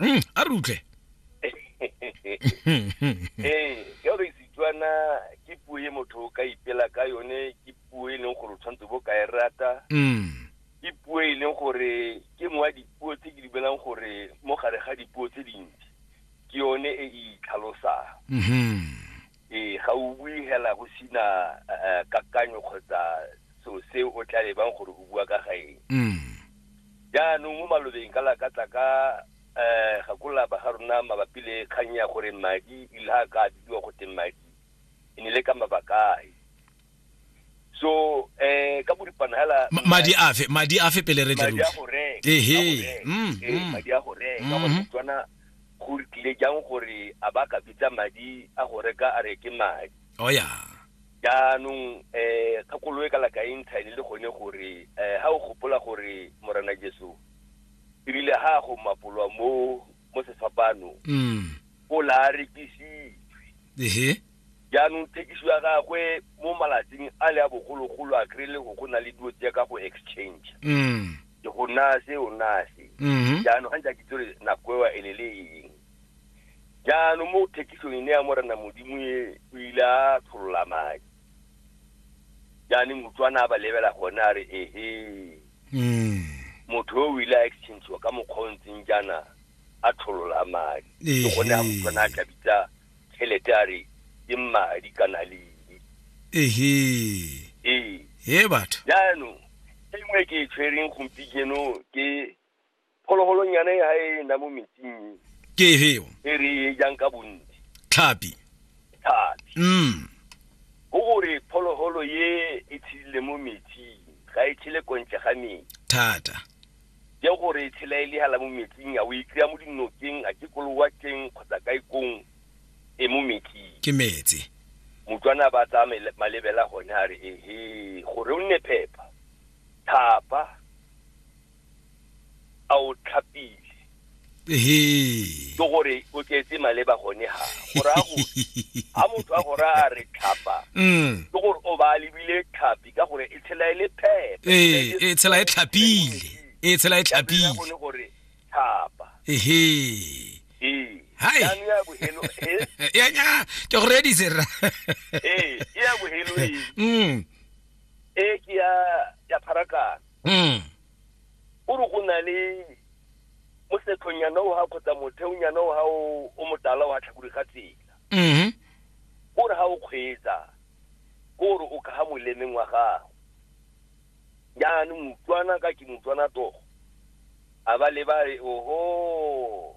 Mm, a re utlwe ee ka gore setswana ke puo e motho o ka ipela ka yone ke puo e leng gore o tshwanetse bo ka e rata Mm, ke puo e leng gore ke mo wa dipuo tse ke di belang gore mo gare ga dipuo tse dintsi ke yone e e itlhalosang mhm. ee ga o bue hela go sina eh, kakanyo kgotsa seo se o tla lebang gore o bua ka ga eng mm. jaanong mo malobeng ka lakatla ka um gakola ba ga rona mabapi le kgang ya gore madi ile ga ka bidiwa go teng madi e ne le ka mabakae so eh ka boripana hela madi afe madi afe pele re tle madi a go reka ehe mm, eh, mm. madi a go reka ka go mm-hmm. tswana go tlile jang gore a ba ka bitsa madi a go reka a reke madi o oh, ya jaanong eh ka koloe ka laka intshane le gone gore eh ha o gopola gore morena Jesu ebile ha go mapolwa mo mo sefapano mm. o la rekisi ehe Jaanong thekiso ya gagwe mo malatsing a le a bogologolo a kry le go go na le dilo tse ka go exchange Mm. ke go naya se o naya se Mhm. jaanong ga ntse a kitse gore nako ewa e lele eng jaanong mo thekisong e ne ya morena modimo e o ile a tlholola madi jaanong utlwana a ba lebela gone a re ehe Mm. motho yo o ile a exchangewa ka mokgwa o ntseng jaana a tlholola madi ke gone a Ehe. utlwana a tla bitsa tšhelete a re ke madi kana ledi ehe ee he batho jaanong e nngwe e ke e tshwereng gompieno ke phologolonyana e ga e na mo metsing ke heo e re e jang ka bontsi tlhapi thata mm go gore phologolo ye e tshedile mo metsing ga e tshele kontle ga metsi thata Ke gore e tshela e le hala mo metsing, a o e kry-a mo dinokeng, a ke ko lewatleng kgotsa kae kong e mo metsing. Ke metse. Motswana ba tsaya mele- malebela gone a re ehe gore o nne phepa thapa a o tlhapile. ke gore o tletse maleba gone ha gorago ga motho a gore a re tlhapa mm. ke gore o ba lebile tlhapi ka gore e tshela e le phepe ee, e tshela e tlhapile e tshela e tlhapile gore tlhapa ehe ee. hai ya nya ke go redise ra ee ke ya bohelo ee mm. e ke ya ya pharakana mm. o re go na le mosetlhonyana o ga kgotsa motheonyana o ga o motala o ga tlhakodi ga tsela mm-hmm. o re ga o kgweetsa o re o kaga molemeng wa gago jaanong motswana ka ke motswana togo a ba le ba re oho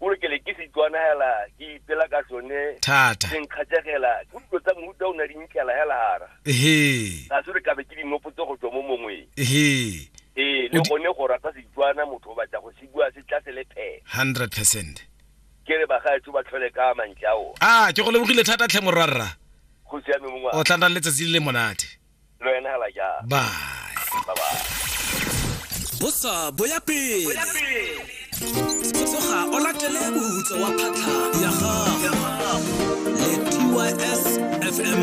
o re ke le ke setswana hela ke ipela ka sone thata se nkgatsegela ke dilo tsa mohuta o na di nkela hela hara ehe ga se re kabe ke dinopotse go tswa mo mongweng ehe ee le O di- gone go rata setswana motho o batla go se bua se tla se le phela 100 percent ke re bagaetso ba tlhole ka mantle ao a ke go lebogile thata tlhe morwarra go siame mongwe o tla nna le letsatsi le le monate le wena hela jang bye bye bye bosa boya pele tsoga o latele bohutso wa phatlha ya gago le tys fm